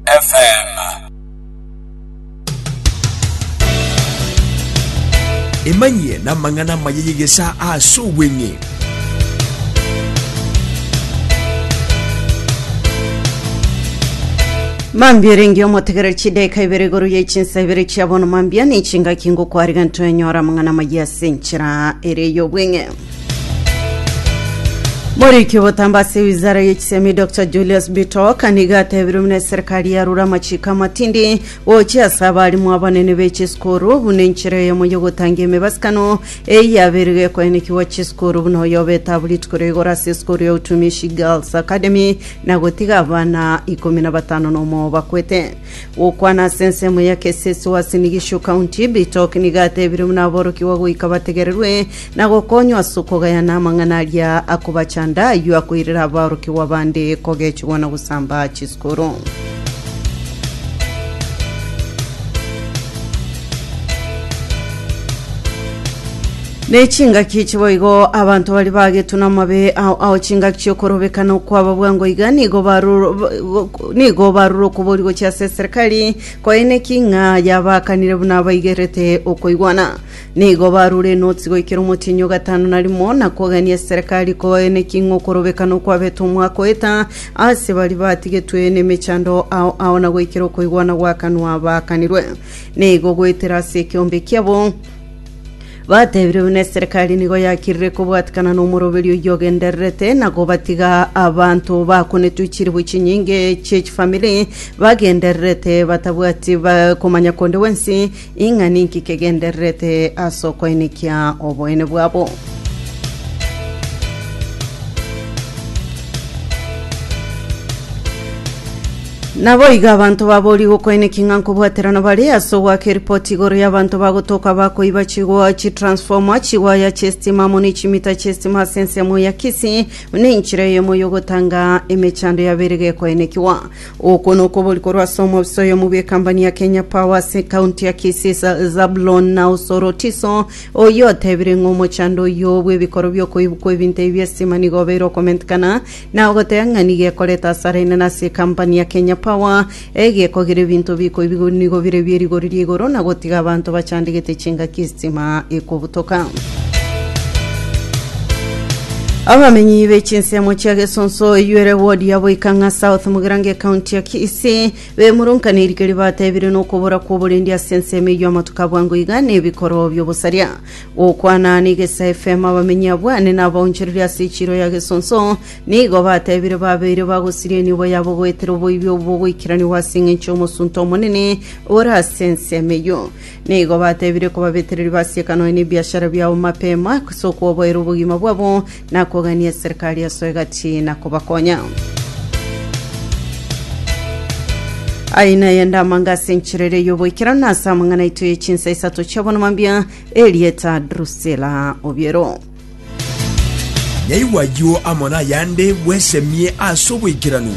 FM. Emanyie namang'ana amaya y'egesaa ase obweng'e. Mambia erenge omotegereri chidaika ibere igoro ya echinsa ibere chia bono mambia ne chingaki ngokwarigani twenyora amang'ana amaya ase enchera ere y'obweng'e. Moriki obotambo ase ewizara y'echisemi Dr Julius Bitok nigo atebire buna eserikari yarure amachiko amatindi gochia ase abarimu abanene b'echisukuru buna enchera eyemo y'ogotangia emebasikano eye yabeire gekoenekigwa chisukuru buna oyo obetabu rituko ria igoro ase esukuru ya Utumishi Girls Academy na gotiga abana ikomi na batano na omo bakwete. Gokwana ase ensemo ya Kesesi Uasin Gishu County, Bitok nigo atebire buna aborokigwa goika bategererwe na gokonywa ase okogayana amang'ana aria akobachanda, ayio akoirera aborokigwa bande kogechigwa na gosamba chisukuru. Nechingaki chiboigo abanto bari bagetwe namabe ao ao chingaki chiokorobekana okwaba bwango iga nigo baruro nigo baruro okobori gochia ase serikali koeneki ng'a yabakanire buna abaigerete okoigwana Nigo barure enotsi goikera omotienyi o gatano na rimo, na kogania eserekari koe neking'o korobekana okwabetwe omwaka oeta, ase baria batigetwe nemechando ao ao na goikera okoigwana gwakanwa baakanirwe. Nigo goetera ase ekeombe kiabo batebire buna eserekari nigo yakirire kobwatikana nomoroberio oyio ogendererete na gobatiga abanto bakonetwe chiribu chinyinge chiechifamiri bagendererete batabwati ba- komanya konde gwensi Ing'ana inki kegendererete ase okoenekia oboene bwabo? Naboigo abanto baborie gokoenekia ng'a nkobwaterana bare ase ogoaka eripoti igoro y'abanto bagotoka bakoiba chigoa chitransfoma chiwaya chi'esitima amo ne chimita chi'esitima ase ensemo ya Kisii buna enchera eyomo y'ogotanga emechando yabeire gekoenekiwa Okwo nokobori korwa ase omobisa oyomo bw'ekambani ya Kenya Power ase ekaunti ya Kisii Zabulon na Osoro Tiso oyio otebire ng'a omochando oyio bw'ebikoro bi'okoibwa kw'ebinto ebi bi'estima nigo obeire okomentekana na ogoteba ng'a nigo ekorete asara enene ase ekampani ya Kenya Power egekogera ebinto bikoibigwa nigo bire bi'erigori ri'igoro na gotiga abanto bachandegete chingaki estima ekobutoka. Abamenyi be chinsemo chia Gesonso Iyuere ward ya Boikang'a South Mugirango ekaunti ya Kisii bemurunkanire erike ribatebire nokobora kw'oborendi ase ensemo eyio amatuko abwango iga nebikoro biobosaria. Gokwana n'Egesa FM abamenyi abwo ane nabaonchoreria ase echiro ya Gesonso nigo batebire babeire bagosiria enibo yabo goetera oboibi obwo bogoikeraniwa ase engencho y'omosunte omonene ore ase ensemo eyio. Nigo batebire kobabetereri basieka nonya nebiashara biabo mapema, ase okwoboera obogima bwabo, na kogania eserikari yaso egati na kobakonya. Aye naye ndamanga ase enchera eria y'oboikeranu na ase amang'ana aito ye chinsa isato chiabona mambia erieta Drusila Obiero. Nyaigwa ayio amo nayande bwesemie ase oboikeranu.